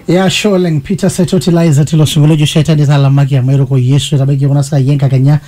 ya sure oleng peter setoti laiza tilo sinkolio ojo shetani talamaki amu eruko yesu etabaiki kuna saai enkakenya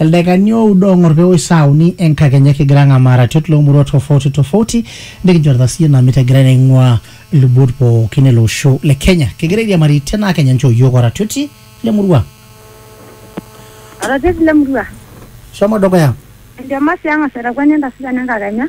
ildaikani oudo ong'or peewoi saa uni enkakenya kigira ang'amaa ratiot loomurua tofauti tofauti nikinchorita siiyie ina mitagirai naing'ua ilubot pookin ele osho le kenya kigira airiamari tenaa kenya nchoo yiok oratioti lemurua Oratioti lemurua. shomo dukuya Entemasi ang'as aitakuani entasita nenkakenya.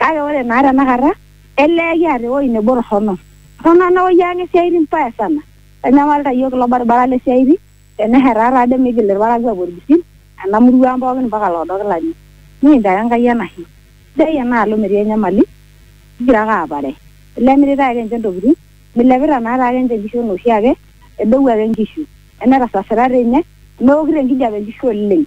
Kake ore naa tenakata, elee kiata ewueji nebo torrono. Torrono ena wueji ang esiaaitin mbaya sana. Eitanyamalita iyiook ilo baribara le siaaitin teneshetaa taa doi meigil ilparakuo aapuo ilpisin ena murua ang pooki mpaka loodo kilani. Nikincho ake Enkai enashe. Sidai enaalo metii enyamali kigira ake aapare. Elee emiritae ake ninche intokitin, meilepita naa taake ninche inkishu enaa oshiake, edou ake inkishu. Emetasasita doi ninye, meokito enkijape inkishu oleng.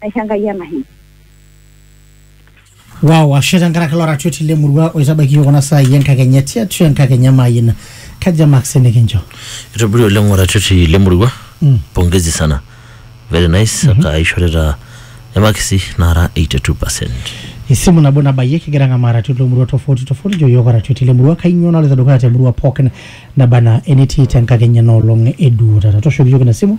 aisho Enkai enahe. Wow, ashe tenkaraki ilo ratioti le murua oitabaiki iyiook kuna saai enkakenya tiatua enkakenya maayina. Kaja marks nikincho? Itobiri oleng oratioti le murua. Mm. Pongezi sana. Very nice. Mm -hmm. Akaishorita emakisi nara 82%. Esimu nabo nabayie kigira ang'amaa ratioti lomurua tofauti tofauti jo iyiook oratioti le murua kainyoo naloito dukuya te murua pookin naba anaa enetii te nkakenya ena olong e duo taata. Tooshoki iyiook ina simu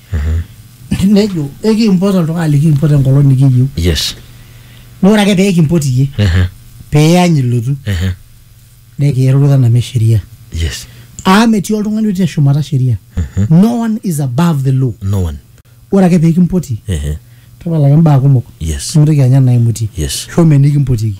nejo ekimpot oltung'ani likimpot enkolong nikiyieu yes naa ore ake pee kimpot iyie Ehe, peany ilotu ehe, nikiirurita name sheria yes amu metii oltung'ani otii teshumata sheria no one is above the law no one ore ake pee kimpoti Ehe, tapalaki imbaa kumok yes nimintoki anya naimutie yes shomo enikimpotieki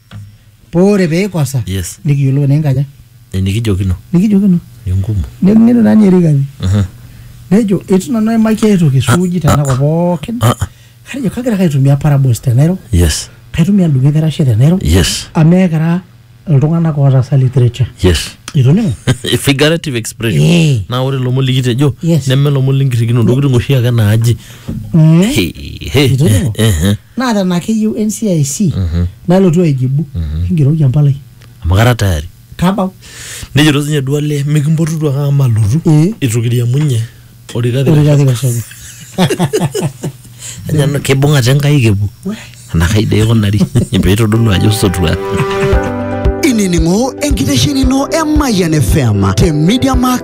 Poore pee ikosa Yes. nikiyiolou naa enkaja enikijokino nikijokino enkumu neng'enu naa ninye Rigathi Aha. nejo eitu nanu aimaki ai toki suuji tenakop pookin Ah, ah. atejo kagira ake aitumia parables tenairo yes kaitumia ndung'o ekerashe tenairo yes amu ekira iltung'anak ootaasa literature yes itoning'o figurative expression Eh. naa ore lomon likitejo Yes. neme lomon linkirrikino ntokitin oshi ake naaji Mm. Hey, hey. Itoning'o? Eh, eh. naa tena keyieu NCIC nalotu aijibu engeroki empalai amu kara tayari tabau nejito sinye duale mikimpotutu ake amu malotu Eh. itu kiriamunye orikati orikati kashoki Ajo kibung'ate nkaik epuo enakai dee ikunari peitodolu ajo sotua inining'o enkitesheni ino e Mayian FM te Media Max